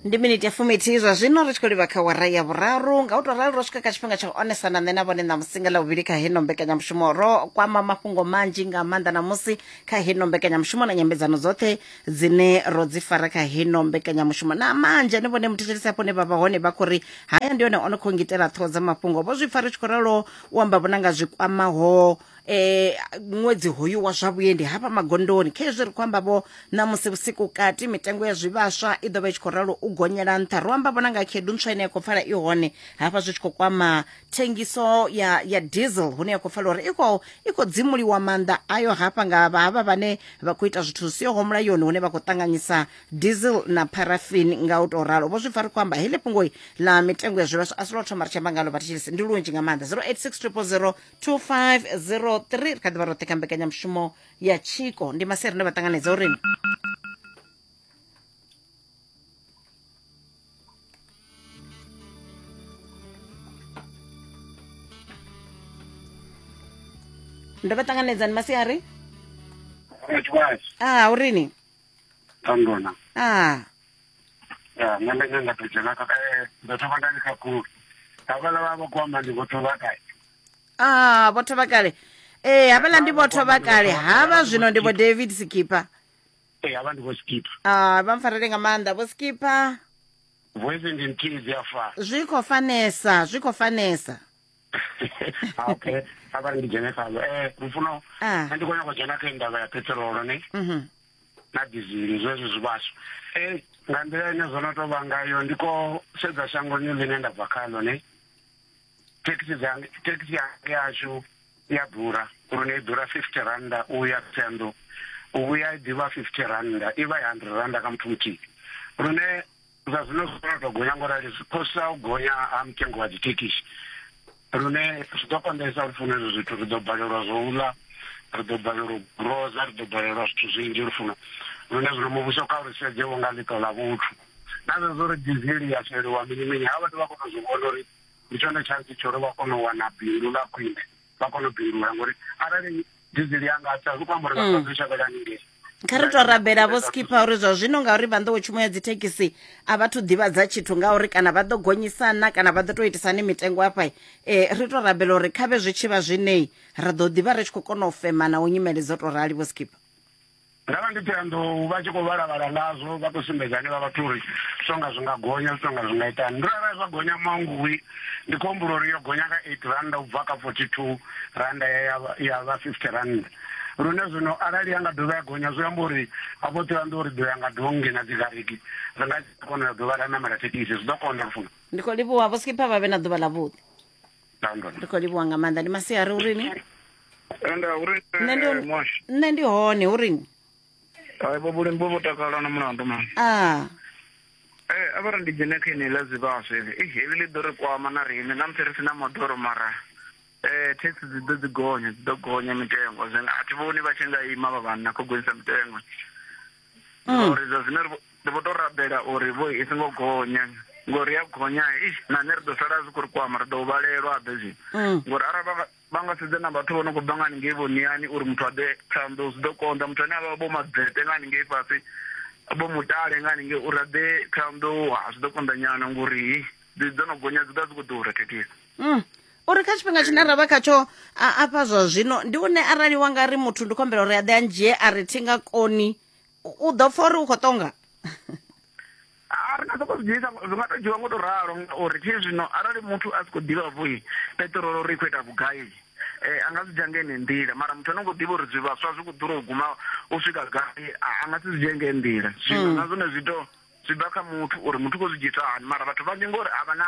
ndi miniti ya fuminthihi zwa zwino ri tshi khou livha kha wara ya vhuraru nga u tou ralo ro swika kha tshifhinga tsha u onesa na nṋe na vhone ṋamusi nga ḽavhuvhili kha heno mbekanyamushumo ro kwama mafhungo manzhi nga maanḓa ṋamusi kha heno mbekanyamushumo na nyambedzano dzoṱhe dzine ro dzi fara kha heno mbekanyamushumo na manzhi ane vhone muthetshelesi afho ne vha vha hone vha khou ri haya ndi one o no khou ngitela ṱhoho dza mafhungo vho zwi pfa ri tshi khou ralo u amba vhona nga zwi kwamaho eh ṅwedzi hoyu wa zwa vhuendi hafha magondoni kha izwi ri khou amba vho ṋamusi vhusiku kati mitengo ya zwivhaswa i ḓo vha i tshi khou ralo u gonyela nṱha ro amba vhona nga khedu ntswa ine ya khou pfala i hone hafha zwi tshi khou kwama thengiso ya ya diesel hune ya khou pfala uri i khou i khou dzimuliwa maanḓa ayo hafha nga havha vhane vha khou ita zwithu zwi siho mulayoni hune vha khou ṱanganyisa diesel na parafin nga u tou ralo vho zwi pfa ri khou amba heḽi fhungoi ḽa mitengo ya zwivhaswa a si lwo thoma ri tshi amba ngalo vhatshilisi ndi lunzhi nga maanḓa 086 000 2503 ri kha ḓivha roṱhe kha mbekanyamushumo ya tshiko ndi maseri nda vha ṱanganedza uri ndo vha ṱanganedza ni masiari a urini a ya nṋe nda nyanga to dzhena kha eh, ndo thoma nda ndi khakhulu havhala vha vha khou amba ndi vho thoma kale ah vho thoma kale ee eh, havhala ndi vho thoma kale havha zwino ndi vho david sikipa ee eh, havha ndi vho sikipa ah vha mpfarele nga maanḓa vho sikipa voice ndi nthihi dzi a fana zwi khou fanesa zwi khou fanesa ah, okay a vha ri ndi dzhene khalo um eh, lufuno ah. nṋe ndi khou nyako u dzhena kha indava ya petrolo ne mhm. na dizili zwezwo zwivhaswa um eh, nga nḓila ine zwo no tou vha ngayo ndi ko sedza shangoni ḽine nda bva khalo ne thekhisi thekhisi yange yashu ya ḓura uri ne i ḓura fifty randa u ya tsendo u vhuya i ḓivha fifty randa i vha i hundred randa kha muthu muthihi lune zwa zwino zwi kona tou gonya ngorali zwi khosa u gonya ha mutengo wa dzithekhisi lune zwi ḓo konḓesa uri funa ezwo zwithu ri ḓo balelwa zwo u ḽa ri ḓo balelwa u groza ri ḓo balelwa zwithu zwinzhi lufuno lune zwino muvhuso kha uri sedze wo nga ḽiṱo ḽa vhuthu na zwezwo uri dizili ya sheliwa mini mini ha vhathu vha kona u zwi vhona uri ndi tshone tshantsi tsho uri vha kone u wana bindu ḽa khwine vha kone u bindula ngori arali dizili yanga a sa zwi khou amba uri vhathu vha ḓo shavhela haningei kha ri to rabela vho skipha uri zwa zwino ngauri vha nḓowetshumo ya dzithekhisi a vha thu ḓivhadza tshithu ngauri kana vha ḓo gonyisana kana vha ḓo tou itisani mitengo afha um eh, ri to rabela uri khavhe zwi tshi vha zwinei ra ḓo ḓivha ri tshi khou kona u femana u nyimele dzo tou rali vho skipha nda vha ndi ṱhoyandou vha tshi khou vhalavhala ngazwo vha khou sumbedza hanevha vhathu uri songa zwi nga gonya zwi tonga zwi nga itani ndo arali zwa gonya mangui ndi khou humbula uri yo gonya nga eight randa u bva kha forty two randa ya vha fifty randa lune zwino arali ya nga dovha ya gonya zwi amba uri afho ṱhoyando uri ḓo ya nga dongi na dzigariki ri nga kona ya dovha ra namela thekhisi zwi ḓo konda funa ndi khou livhuwa vho skipha vha vhe na ḓuvha ḽa vhuḓi London. ri khou livhuwa nga maanḓa ndi masiari urini Ende uri Nṋe ndi- eh, mwashi. nṋe ndi hone urini Hai bo bulimi bo takala na mulandu man. a Eh avara ndi dzhene kha ine ḽa zwivhaswa heli. Eh heli ḽi ḓo ri kwama na riṋe na musi ri sina moḓoro mara eh tax dzi ḓo dzi gonya dzi ḓo gonya mitengo. Zwino a thi vhoni vha tshi nga ima vha vhanna kho gonyisa mitengo. mm. uri zwa zwino ri vho to rabela uri vho i songo gonya ngori ya gonya ish na nṋe ri ḓo sala zwi khou ri kwama ri ḓo vhalelwa abe zwi mm. ngori arali vha nga sedze na vhathu vho no khou bva nga haningei vhoniani uri muthu a ḓe phanḓo zwi ḓo konḓa muthu ane a vha vho madzete nga haningei fhasi vho mutale nga haningei uri a ḓe phanḓo zwi ḓo konḓa nyana ngori ḓi dzo no gonya dzi ḓa dzi khou ḓura thekhisi mm. uri kha tshifhinga tshine ra vha khatsho afha zwa zwino ndi une arali wa nga ri muthu ndi khombela uri a ḓe a ndzhie a ri thi nga koni u ḓo pfa uri u khou tonga a ri nga soko zwi dzhiisa zwi nga tou dzhiwa ngo tou ralo ngauri thi zwino arali muthu a si khou ḓivha vho peṱirolo uri i khou ita vhugai eh anga zwi dzhange ne nḓila mara muthu ano ngo ḓivha uri zwi vhaswa zwi kho ḓura u guma u swika gai anga si zwi dzhange nḓila zwino mm. na zwone zwi to zwi bva kha muthu uri muthu kho zwi dzhisa hani mara vhathu vhanzhi ngori a vha na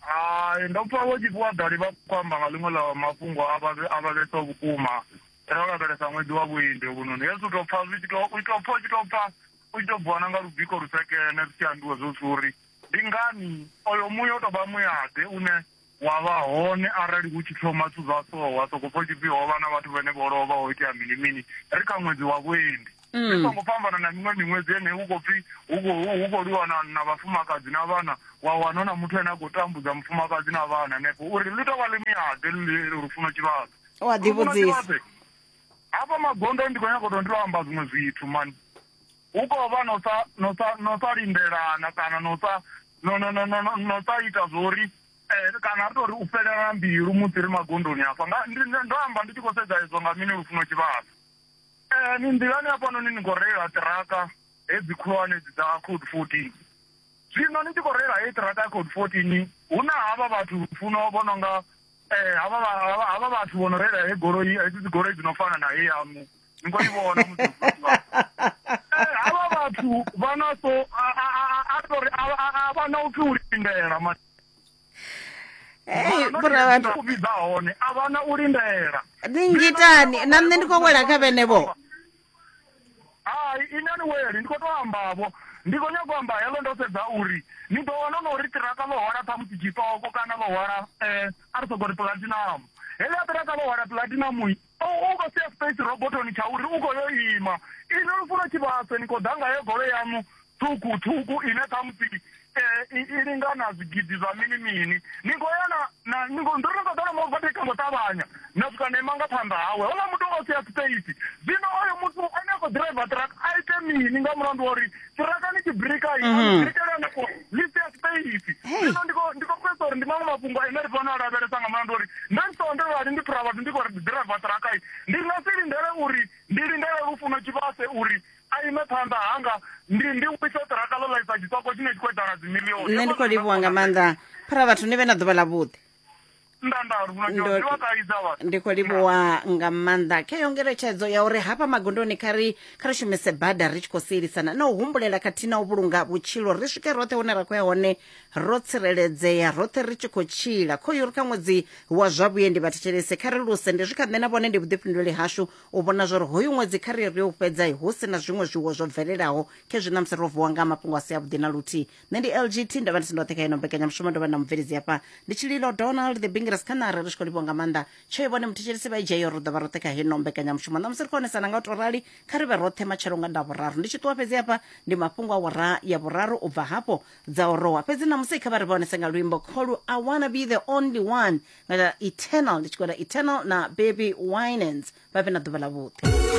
Hai, ndo pfa vho tshifhiwa ḓali vha khou amba nga ḽiṅwe ḽa mafhungo a vha a vha vhesa vhukuma ro lavhelesa ṅwedzi wa vhuendi hovhunoni hezwi u tou pfa zwi tshi tou u tou pfa u tshi tou pfa u tshi tou bviwa na nga lubiko lusekene zwi tshi ambiwa zwo zwithu uri ndi ngani oyo muya u tou vha muyaḓe une wa vha hone arali hu tshi thoma zwithu zwa so wa sokou pfa u tshi pfi ho vha na vhathu vhane vho lovha ho itea mini mini ri kha ṅwedzi wa vhuendi mm. zwi songo fhambana na miṅwe miṅwedzi ene hu khou pfhi hu khou lwiwa na na vhafumakadzi na vhana wa wana hu na muthu ane a khou tambudza mufumakadzi na vhana hanefho uri ḽi tou vha ḽi miade lufuno tshivhadzo u a ḓivhudzisa hafha magondo ndi khou nyaka u tou ndi lwo amba zwiṅwe zwithu mani hu khou vha no sa no sa no sa lindelana kana no sa no no no no no sa ita zwo uri Eh, kana ri tori u fhelela mbilu musi ri magondoni afha ndo amba ndi tshi khou sedza ezwo nga mini lufuno tshivhasa Eh, ni nḓilani hafhanoni ni khou reila ṱiraka hedzi khulwane dzi dza code 14 zwino ni tshi khou reila heyi ṱiraka ya code 14 hu na havha vhathu funo vho no nga eh, havha vha- havha havha vhathu vho no reila he goloi hedzi dzi goloi dzi no fana na he yamu ni khou i vhona musi Eh, havha vhathu vha na so a- a- a- a- a ri tou ri a- a- a vha na upfi u lindela ma- Hey, bora vhathu u vhidza hone a vha na u lindela ni ngitani na nṋe ndi khou wela kha vhenevho hai ine ni weli ndi khou tou ambavho ndi khou nyaka u amba helo ndo sedza uri ni ḓo wana no ri tiraka ḽo hwala ṱhamusi tshitoko kana ḽo hwala um a ri soko ri platinum heḽia ṱiraka ḽo hwala platinum O u vha sia space robothoni tsha uri u khou yo ima. Inwi lufuno tshivhaswe ni khou ḓa nga heyo goloi yaṋu ṱhukhu ṱhukhu ine khamusi i i lingana zwigidi zwa mini mini. Ni khou ya na na ni khou ndo no ṱoḓa na mu overtaker ngo ṱavhanya na swika na ima nga phanḓa hawe. Houḽa muthu o vha sia space zwino oyo muthu ane a khou ḓiraiva truck a ite mini nga mulandu wa uri tiraka ni tibirika yi mhm. birikela nako ni se space ndino ndiko ndiko pesa uri ndi mamwe mafhungo ane ri fanela lavhelesa nga malandu uri nda ndi sonde vhali ndi phura vhathu ndi kho ri ḓiraiva tiraka yi ndi nga si lindele uri ndi lindele lufuno tshivhase uri a ime phanḓa hanga ndi ndi wise tiraka ḽo ḽaisa tshitoko tshine tshi khou edala dzimilioni nṋe ndi khou livhuwa nga maanḓa phura vhathu ni vhe na ḓuvha ḽa vhuḓi ndi khou livhuwa nga maanḓa kha yo ngeletshedzo ya uri hafha magondoni kha ri kha ri shumise bada ri tshi khou sielisana na u humbulela khathihi na u vhulunga vhutshilo ri swike roṱhe hune ra khou ya hone ro tsireledzea roṱhe ri tshi khou tshila khoyu ri kha ṅwedzi wa zwa vhuendi vhathetshelesi kha ri luse ndi zwi kha nṋe na vhone ndi vhuḓifhinduleli hashu u vhona zwa uri hoyu ṅwedzi kha ri ri u fhedza hu si na zwiṅwe zwiwo zwo bvelelaho khezwi na musi ro vuwa nga mafhungo a si avhuḓi na luthihi nṋe ndi lgt ndovha ndi si ndoṱhe kha ino mbekanyamushumo ndovha na mubveledzi hafha ndi tshililo donald the bingres khanare ri tshi khou livhiwa nga maanḓa tsho ivhone muthetshelisi vha ijeyo ri ḓovha roṱhe kha heno mbekanyamushumo ṋamusi ri khou onesana nga u to rali kha ri vhe roṱhe matshelo nga nda vhuraru ndi tshi ṱuwa fhedzi hafha ndi mafhungo a wara ya vhuraru u bva hafho dza orowa fhedzi ṋamusi kha vha ri vha onese nga luimbo kholu i wanna be the only one nga eternal ndi tshi khou ita eternal na baby winans vha vhe na ḓuvha ḽa vhuḓi